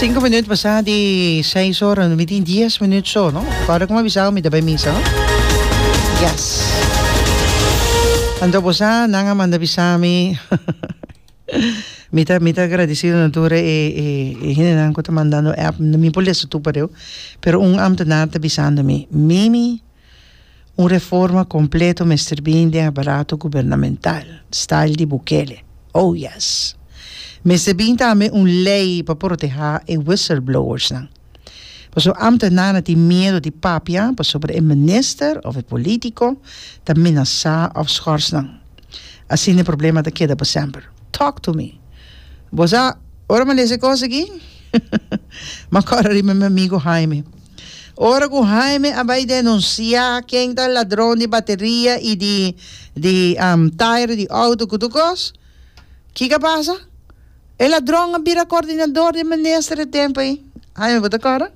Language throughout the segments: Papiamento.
Sinku minuut pasá di seis ora, mi tin dies minuut so, no? Kòrda ku mi a bisa ora mi ta bai misa, no? Yes. Anto bosá nan a manda bisa mi mi ta mi ta agradesido na tur e e hendenan ku ta mandando app, mi por lesa tur pare'e, pero un ambtenaar ta bisando mi, Mimi Un reforma completo mester bin den aparato gubernamental, style di Bukele. Oh yes! Mester bin tambe un ley pa proteha e whistleblowersnan. Pasobra ambtenaren a tin miedo di papia pasobra e minister of e politico ta minasa of schors nan. Asina e problema ta keda pa semper. Talk to me! Bo sa ora m'a lesa e cos aki? M'a cora riba mi amigo Jaime. Ora cu Jaime a bay denuncia ken ta ladron di bateria y di di um, tire di auto cu tur cos, kica pasa? E ladron a bira coordinador di minister e tempo ey. Jaime bo ta corda?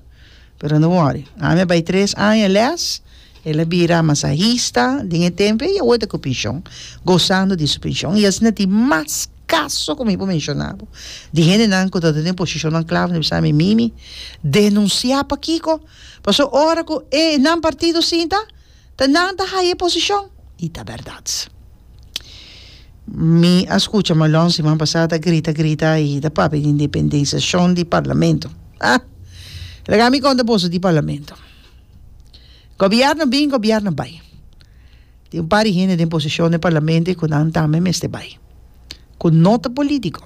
Pero no worry, Jaime a bay tres aña les. El a bira masahista den e templo y awor ta cu pension, gozando di su pension. Y asina tin mas caso cu mi por menciona bo, di hendenan cu tabata den posicionnan clave, ta bisa mi, Mimi, denuncia pakico? Pasobra ora cu e nan partido sinta, ta nan ta haya e posicion. Y ta berdad. Mi a scucha Malong siman pasado ta grita, grita y ta papia di independenciacion di parlamento. Ah! Laga mi conta boso di parlamento. Gobierno bin, gobierno bai. Tin un par di hende den posishon den parlamento e ku nan tambe mester bai, ku no ta polítiko,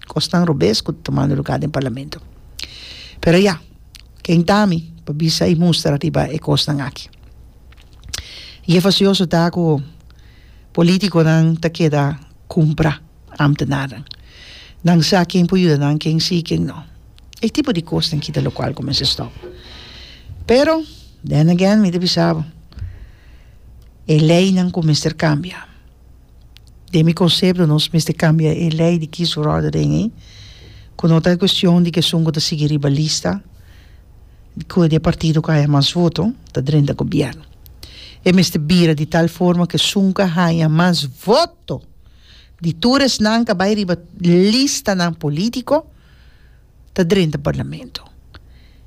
kosnan robes ku ta tumando lugá den parlamento. Pero ya, ken ta mi pa bisa i mustra riba e kosnan aki? I e fasioso ta ku polítikonan ta keda kumprá ámtenarnan. Nan sa ken por yuda nan, ken sí, ken no. E tipo di kosnan kita lokual kumins'é stòp. Pero, then again, mi ta bisa bo, e leinan ku mester kambia. Den mi konsepto nos mester kambia e lei di kis ròda den ei, ku no ta e kuestion di ku esun ku ta sigui riba lista, ku e partido ku haña mas voto ta drenta gobièrnu. E mester bira di tal forma ku esun ku a haña mas voto di tur esnan ku a bai riba listanan polítiko, ta drenta parlamento.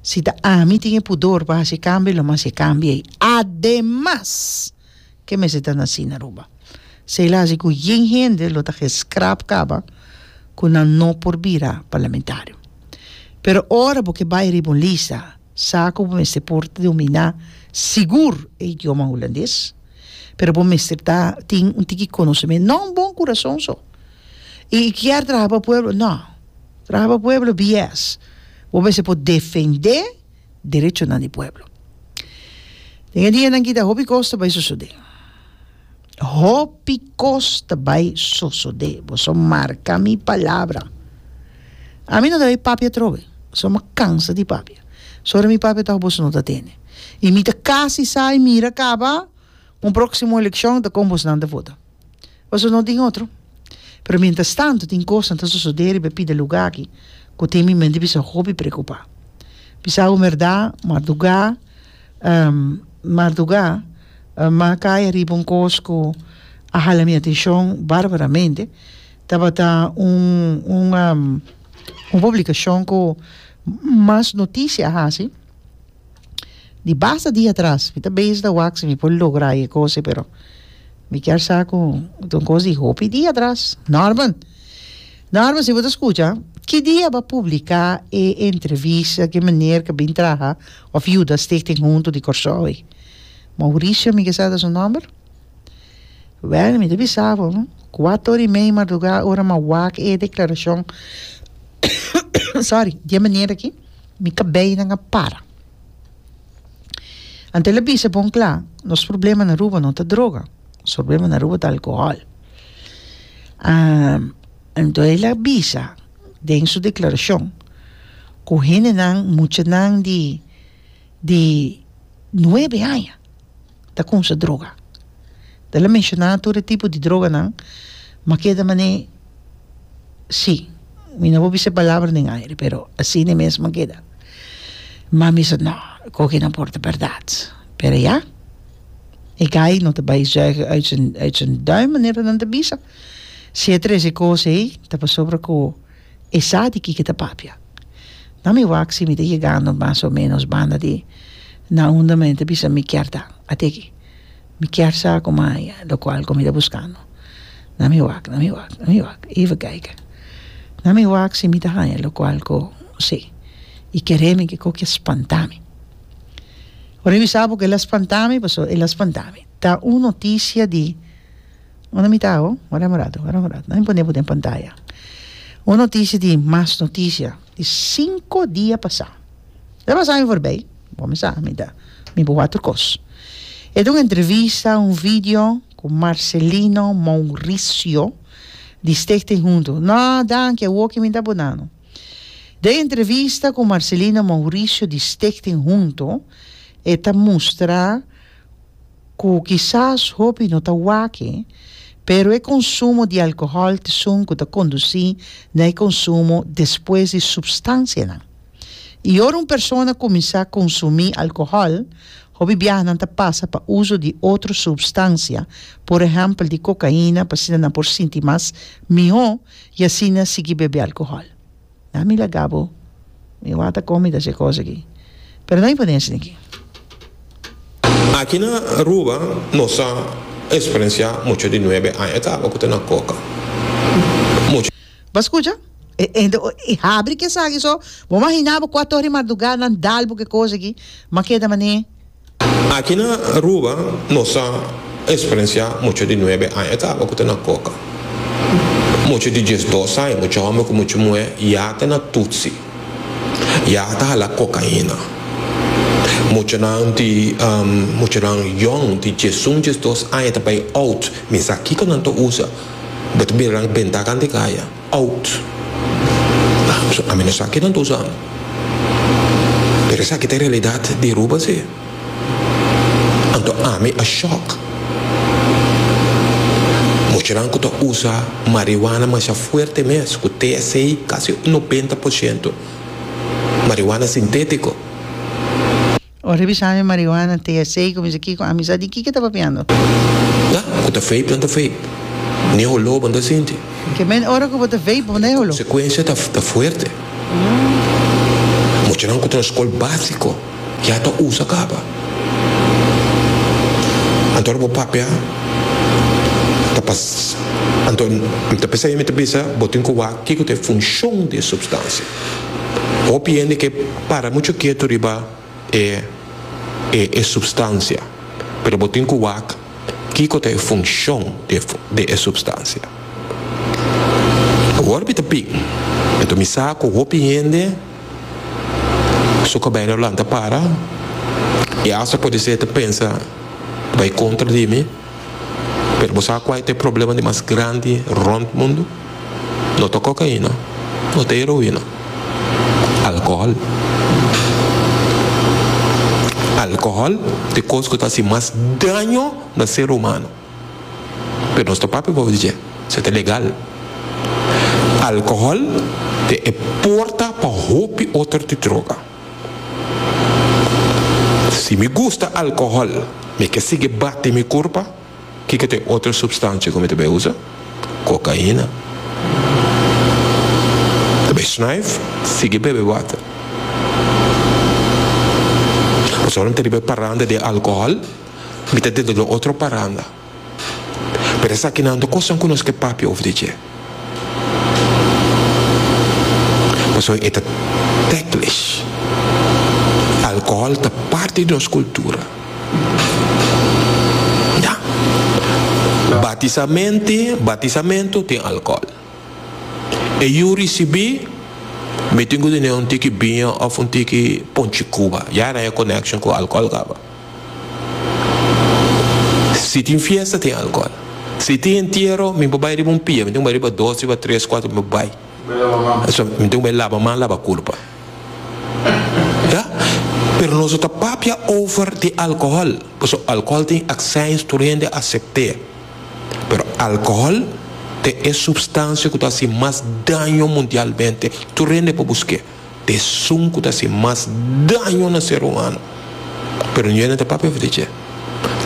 Si ta ami tin e pudor pa haci e cambio lo mester cambia ey. Ademas ke mester ta naci na Aruba. Sey lo haci cu yin hende lo ta ke scrap caba cu nan no por bira parlamentario. Pero ora bo ke bay riba un lista sa cu bo mester por domina sigur e idioma Hulandes, pero bo mester ta tin un tiki conocimen non bon curason so. y y kier traha pa pueblo no traha pa pueblo bies bo mester por defende derechonan di pueblo den e dianan aki ta hopi cos ta bay sosode hopi cos ta bay sosode boso marca mi palabra ami no ta bay papia atrobe so mi a cansa di papia so ora mi papia tok boso no ta tene y mi ta casi sa y mira caba un proximo eleccion ta con bos nan ta vota. Pasobra no tin otro. Pero mientras tanto tin cosnan ta sosode riba e pida luga aki cu tin mi mente bisa hopi preocupa. Bisa un berdad marduga marduga m'a cay riba un cos cu a hala mi atencion barbaramente. Tabata un un publicacion cu mas noticia a haci di basta dia atras mi ta bezi ta wak si mi por logra e cose pero mi kier sa cu it un cos di hopi dia atras Norman Norman si bo ta scucha ki dia bo a publica e entrevista ki meneer cu a bin traha of yuda Stichting Huntu di Corsou ey Mauricio mi kisa ta su nomber wel mi ta bisa bo cuato ora y medio di marduga ora mi a wak e declaracion sorry di e meneer aki Mi kabei nan a para. Anto el a bisa bon kla, Nos problema na Aruba no ta droga. Nos problema na Aruba ta alkohòl. Anto el a bisa den su deklarashon ku hendenan, muchanan di di nuebe aña ta konsa droga. Del a menshoná tur e tipo di droganan, ma keda man'é sí. Mi no por bisa e palabra den aire, pero asina mesma keda. Ma mi sa no, koke no por ta bèrdat. Pero ya, e guy no ta bai zùigen uit zùn, uit zùn duim, manera nan ta bisa. Si e trese kos ei, ta pasobra ku. E sa di kiko e ta papia. Na mi wak si mi ta yegando mas o menos banda di na unda men ta bisa mi kier ta. Ateki. Mi kier sa ku maña lo kual ku mi ta buskando. Na mi wak, na mi wak, na mi wak. Even kijke. Na mi wak si mi ta haña lo kual ku si. I kere mi kiko ke spanta mi. Ora mi sa por ke el a spanta mi paso el a spanta mi. Ta un notisia di. Ora mi ta awo, ora un ratu, ora un ratu, nan mi pone bo den pantaya. Un noticia di mas noticia di cinco dia pasa. E pasa mi forbey, bo mi sa mi ta mi bo water cos. E ta un entrevista, un video cu Marcelino Mouricio di Stichting Hunto. No danki, awoki mi ta bo nano. Den entrevista cu Marcelino Mouricio di Stichting Hunto e ta mustra. cu kisas hopi no ta wake, pero e consumo di alcohol t'esun cu ta conduci na e consumo despues di substancianan. Y ora un persona cuminsa consumi alcohol, hopi biaha nan ta pasa pa uzo di otro substancia, por ehempel di cocaina, pasinta nan por sinti mas miho y asina sigui bebe alcohol. Ya mi laga bo, mi wata komi ta se kos aki. Pero no imponé asina aki. Aki na Aruba nos a experenciá mucho di nuebe aña ta haba cu ta na coca. Mucho. Bo a scucha? E hende oí habri ki esaki so bo mahiná bo cua tor di mardugá nan dal bo ki cos aki, ma keda mané. Aki na Aruba nos a experiencia mucho di nuebe aña e tabata cu ta na coca. Mucho di diesdos aña, mucho homber cu mucho muher ya ta na tutsi, ya ta hala cocaina. Muchonan di muchonan yong di diesun, diesdos aña ta bay out, misa kico nan ta usa, bo ta mira nan benta kant di caya. Out. Paso ami no sa ke nan ta usa amo. Pero esaki ta e realidad di Aruba si. Anto ami a shock. Muchanan cu ta usa marihuana masha fuerte mes cu TSA casi un nobenta por ciento marihuana sintetico. Ora e bisa mi marihuana, THC, ku mi sa kiko, ami sa di kiko e ta papiando. Ya, ku ta vape nan ta vape. Ni e holó bo no ta sinti. Ke men ora ku bo ta vape, bo no ta e holó. Konsekuensia ta fuerte. Muchanan ku ta na skol básiko ya ta usa kaba. Anto ora bo papia, ta pas, anto mi ta p'esei mi ta bisa bo tin ku wak kiko ta e funshon di e supstansia. Hopi hende ke. para mucho ketu riba e e e substancia, pero bo tin cu wak kico ta e funcion di e di e substancia. Awor mi ta pig, enton mi sa cu hopi hende su cabello a lanta para y asta pudi ser ta pensa bay contra di mi, Pero bo sa kua e ta e problema di mas grandi rond mundu? No ta kokaina, no ta heroina. Alkohòl. Alkohòl ta e kos ku ta hasi mas daño na ser humano. Pero nos ta papia bobo di dje. Se ta legal. Alkohòl ta e porta pa hopi otro ti droga. Si mi gusta alcohol mi ke sigui bati mi kurpa kiko ta e otro supstansia ku mi ta bai usa? Kokaina. Ta bai snuif, sigui bebe water. Pasobra mi ta riba e paranda di alcohol mi ta dentro di otro paranda. Pero esakinan ta kosnan ku nos ke papia over di dje. Pasobra e ta teklish. Alkohòl ta parti di nos kultura. Ya. Batisamente, batisamentu tin alkohòl. E yu risibí, mi tin ku tene un tiki biña òf un tiki ponchi Cuba. Ya nan e konèkshon ku alkohòl kaba. Si tin fiesta tin alcohol. Si tin entiero mi por bay riba un pia, mi tin cu bay riba dos, riba tres, cuatro, mi por bay. Mi tin cu bay laba man laba culpa. Ya. Pero nos no ta papia over di alcohol, pasobra alcohol tin accijns tur hende a acepte. Pero alcohol ta e substancia cu ta haci mas daño mundialmente, tur hende por busque. Esun ku ta hasi mas daño na ser humano. Pero no yende ta papia over di dje.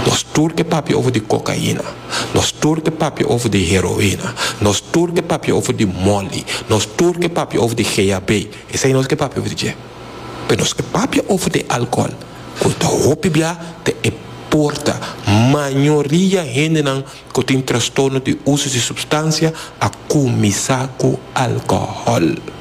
Nos tur ke papia over di kokaina. Nos tur ke papia over di heroina. Nos tur ke papia over di moli. Nos tur ke papia over di GHB. Esei nos ke papia over di dje. Pero nos ke papia over di alkohol, ku ta hopi bia ta e porta. Mayoria hendenan ku tin trastorno di uso di supstansia a kuminsá ku alkohol.